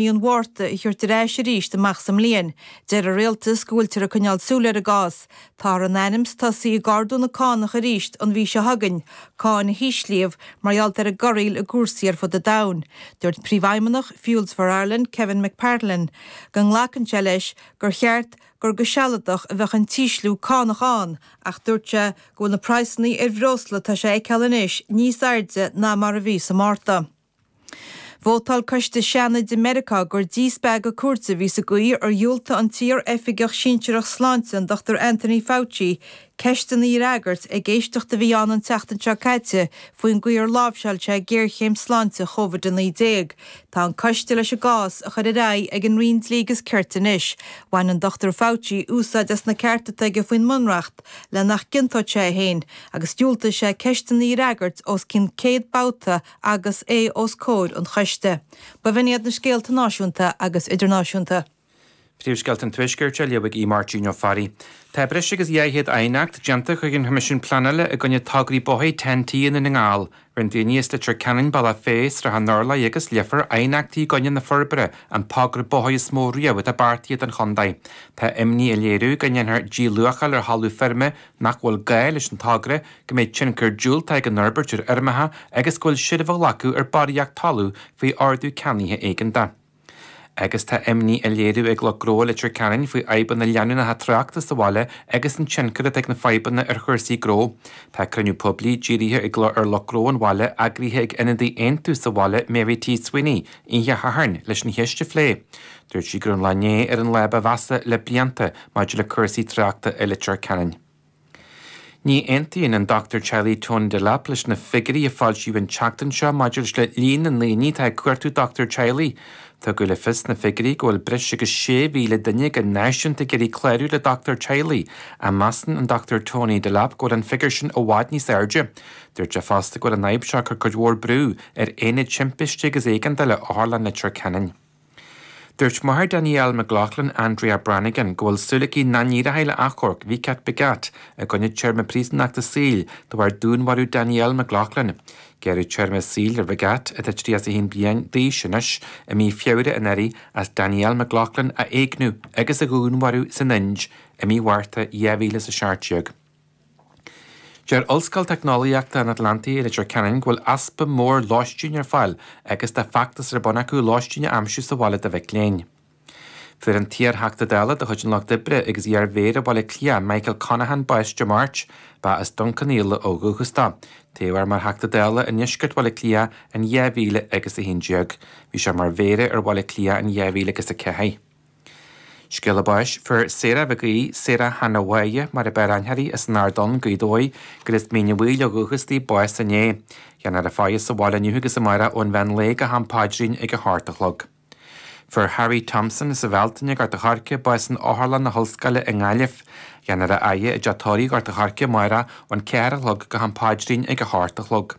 mí an Mhárta a thabhairt ar ais arís amach sa mbliain. Deir an rialtas go bhfuiltear ag coinneáil súil ar an gcás. Táthar in ainm is tosaí ag ardú na cánach arís an mhí seo chugainn, cáin a híslíodh mar gheall ar an gcogaíocht i gcúrsaí ar fud an domhain. Dúirt príomhfheidhmeannach Fuels for Ireland, Kevin McPartlan, go nglacann sé leis gur cheart gur go sealadach a bheadh an t-ísliú cánach ann, ach dúirt sé go bhfuil na praghsanna ar bhreosla atá le feiceáil anois níos airde ná mar a bhí sa Mhárta. Vótáil coiste Seanaid i Meiriceá gur díspeagadh cúirte a bhí sa gcaoi ar dhiúltaigh an t-iar-oifigeach sinsearach sláinte, an Dr Anthony Fauci, ceisteanna a fhreagairt ag éisteacht a bhí ann an tseachtain seo caite faoin gcaoi ar láimhseáil sé géarchéim sláinte Covid-19. Tá an coiste leis an gcás a chur ar aghaidh ag an Roinn Dlí agus Cirt anois. Bhain an Dr Fauci úsáid as na cearta atá aige faoin mBunreacht le nach gciontódh sé é féin agus dhiúltaigh sé ceisteanna a fhreagairt os cionn 100 babhta agus é os comhair an choiste. B'in iad na scéalta náisiúnta agus idirnáisiúnta. Príomhscéalta an Tuaiscirt á léamh ag Máirtín Ó Fearraigh. Tá breis agus dhá chéad aighneacht déanta chuig an Choimisiún Pleanála i gcoinne togra bóthair Ten-T i nDún na nGall. Rinne daoine as Leitir Ceanainn, Bealach Féich, Srath an Urláir agus Leifear aighneachtaí i gcoinne na forbartha, an togra bóthair is mó riamh atá beartaithe don chontae. Tá imní á léiriú go ndéanfar díluacháil ar thalamh feirme nach bhfuil gá leis an togra, go mbeidh tionchar diúltach ag an fhorbairt ar fheirmeacha agus go bhfuil seilbh á glacadh ar bharraíocht talún faoi ordú ceannaithe éigeantach. Agus tá imní á léiriú ag lucht gnó i Leitir Ceanainn faoi fhadhbanna leanúnacha tráchta sa bhaile agus an tionchar atá ag na fadhbanna ar chúrsaí gnó. Tá cruinniú poiblí dírithe ag ar lucht gnó an bhaile eagraithe ag ionadaí Aontú sa bhaile Mary T. Sweeney oíche Shathairn leis an cheist a phlé. Dúirt sí go raibh an lá inné ar an lá ba mheasa le blianta maidir le cúrsaí tráchta i Leitir Ceanainn. Ní aontaíonn an Dr Teaghlaigh Tony Delap leis na figiúirí a foilsíodh an tseachtain seo maidir leis le líon na ndaoine atá ag cuartú dochtúra teaghlaigh. Tugadh le fios sna figiúirí go bhfuil breis agus 6,000 duine go náisiúnta ag iarraidh clárú le dochtúir teaghlaigh, ach measann an Dr Tony Delap go bhfuil an figiúr sin i bhfad níos airde. Dúirt sé fosta go bhfuil an fhadhb seo ag cur cuid mhór brú ar aonaid timpiste agus éigeandála Otharlann Leitir Ceanainn. Dúirt máthair Danielle McLaughlin, Andrea Brannigan, go bhfuil súil aici nach n-éireoidh le achomharc Vikat Bhagat i gcoinne téarma príosúnachta saoil de bharr dúnmharú Danielle McLaughlin. Gearradh téarma saoil ar Bhagat, atá 31 bliain d'aois anois, i mí Feabhra anuraidh as Danielle McLaughlin a éigniú agus a dhúnmharú san Ind i mí Mhárta 2017. Deir Ollscoil Teicneolaíochta an Atlantaigh i Leitir Ceanainn go bhfuil easpa mór lóistín ar fáil agus tá feachtas ar bun acu lóistín a aimsiú sa bhaile do mhic léinn. Fuair an t-iarTheachta Dála de chuid an Lucht Oibre agus iar-Mhéara Bhaile Átha Cliath Michael Conaghan bás Dé Máirt. Ba as Dún Cionnaola ó dhúchas dó. Toghadh é mar Theachta Dála i ndeisceart Bhaile Átha Cliath in 2011. Bhí sé mar Mhéara ar Bhaile Átha Cliath in 2004. Scéala báis. Fuair Sarah Mhic Aoidh, Sarah Hannah Mháire mar ab fhearr aithne uirthi as an Ard Donn, Gaoth Dobhair, gur as Mín Uí Bhaoill ó dhúchas di, bás inné. Dhéanfar a faire sa bhaile inniu agus amárach ón mheán lae go ham paidrín ag a hocht a chlog. Fuair Harry Thompson as an Bhealtaine, Gort a' Choirce, bás in Otharlann na hOllscoile i nGaillimh. Dhéanfar a fhaire i dteach tórraimh Ghort a' Choirce, amárach, ón ceathair a chlog go ham paidrín ag a hocht a chlog.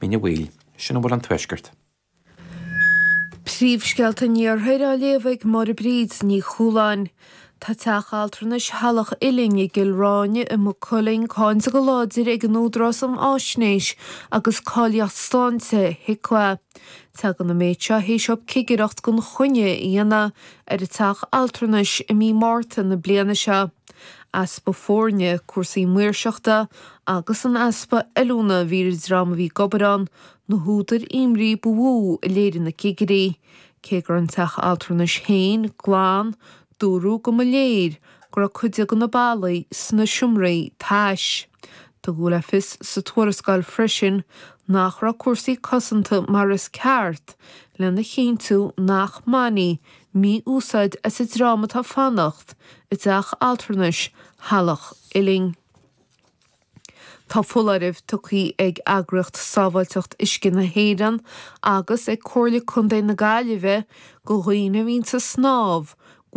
Mín Uí Bhaoill, sin a bhfuil ón Tuaisceart. Príomhscéalta an Iarthair á léamh ag Máire Bríd Ní Chualáin. Tá teach altranais Theaghlach Uilinn i gCill Ráine i Maigh Cuilinn cáinte go láidir ag an Údarás um Fháisnéis agus Cáilíocht Sláinte, HIQA. Tagann an méid seo théis dóibh cigireacht gan choinne a dhéanamh ar an teach altranais i mí Márta na bliana seo. Easpa foirne, cúrsaí maoirseachta, agus an easpa oiliúna a bhí ar an dream a bhí ag obair ann, na húdair imní ba mhó a léirigh na cigirí. Cé go raibh an teach altranais féin glan, dúradh go mba léir go raibh cuid de na ballaí sna seomraí tais. Tugadh le fios sa tuarascáil freisin nach raibh cúrsaí cosanta mar is ceart, lena chinntiú nach mbainfí mí-úsáid as an dream atá ag fanacht i dteach altranais Theaghlach Uilinn. Tá foláireamh tugtha ag Eagraíocht Sábháilteacht Uisce na hÉireann agus ag Comhairle Contae na Gaillimhe do dhaoine a bhíonns ag snámh go bhfuil